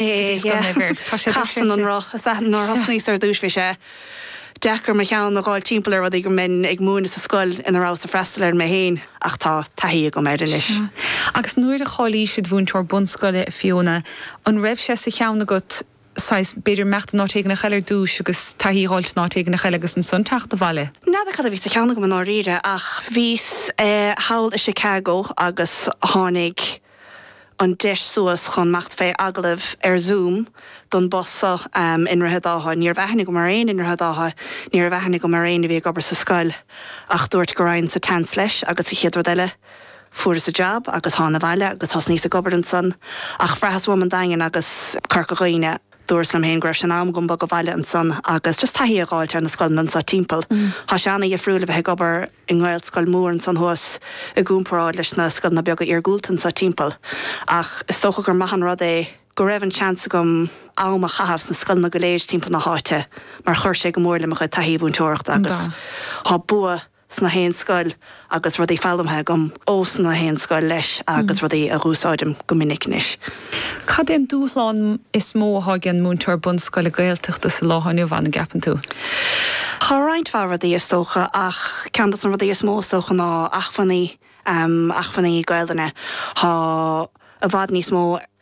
Casann an roth. Sea, nuair a thosnaíos ar dtúis bhí sé deacair mo cheann a dh'fháilt timpeall ar rudaí go mbeinn ag múineadh sa scoil ina rabhas ag freastal air mé féin ach tá taithí agam air anois. Sea. Agus nuair a cháilíos id' mhúinteoir bunscoile, a Fiona, an raibh sé sa cheann agat, saghas, b'fhéidir imeacht in áit éigin eile ar dtúis agus taithí a dh'fháilt in áit éigin eile agus ansan teacht abhaile? N'fheadar cad a bhí sa cheann agam i ndáiríre ach bhíos thall i Chicago agus tháinig. an deis suas chun imeacht fé agallamh ar Zoom don bpost so i nDroichead Átha. Ní raibh aithne agam ar éinne i nDroichead Átha, ní raibh aithne agam ar éinne a bhí ag obair sa scoil. Ach dúrt go raghainn sa tseans leis agus an chéad rud eile fuaireas an job agus thána abhaile agus thosnaíos ag obair ansan ach bhraitheas uaim an Daingean agus Corca Dhuibhne. Dúras lem féin go raibh sé in am dom bogadh abhaile ansan agus just taithí a dh'fháilt ar na scoileanna anso timpeall. Thá sé ana-dhifriúil a bheith ag obair i nGaelscoil mhór ansan thuas i gcúmparáid leis na scoileanna beaga iargúlta anso timpeall. Ach is dócha gur maith an rud é go raibh an seans agam am a chaitheamh sna scoileanna go léir timpeall na h-áite mar chuir sé go mór le mo chuid taithí mhúinteoireachta agus thá bua 's na haon scoil agus rudaí foghlamtha agam ós na haon scoil leis agus rudaí a dh'úsáidim go minic anois. Cad é an dúshlán is mó atá ag an múinteoir bunscoile Gaeltachta sa lá atá inniu ann, an gceapann tú? Tá roinnt mhaith rudaí is dócha ach ceann dos na rudaí is mó is dócha ná acmhainní, acmhainní Gaolainne. Tá i bhfad níos mó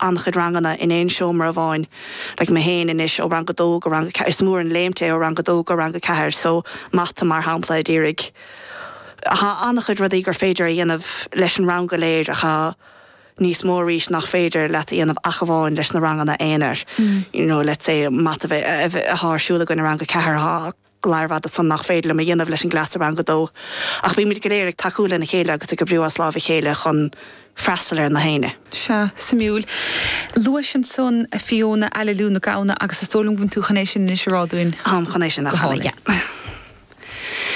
an-chuid ranganna in aon seomra amháin like mé féin anois ó rang a dó go rang a ceathair is mór an léimt é ó rang a dó go rang a ceathair so mata mar shampla a d'iarraidh thá an-chuid rudaí gur féidir a dhéanamh leis an rang go léir ach thá níos mó arís nach féidir leat a dhéanamh ach amháin leis na ranganna aonair you know let's say mata a bheadh, a bheadh, thá ar siúl againn i rang a ceathair thá go leor, i bhfad ansan nach féidir liom a dhéanamh leis an gcleas i Rang a Dó. Ach bímid go léir ag tacú lena chéile agus ag oibriú as láimh a chéile chun freastal ar na héinne. Sea. Suimiúil. Luais ansan a Fiona, Aililiú na Gamhna agus is dóigh liom go bhfuil tú chun é sin anois a rá dúinn. Táim chun é sin a chanadh, yeah.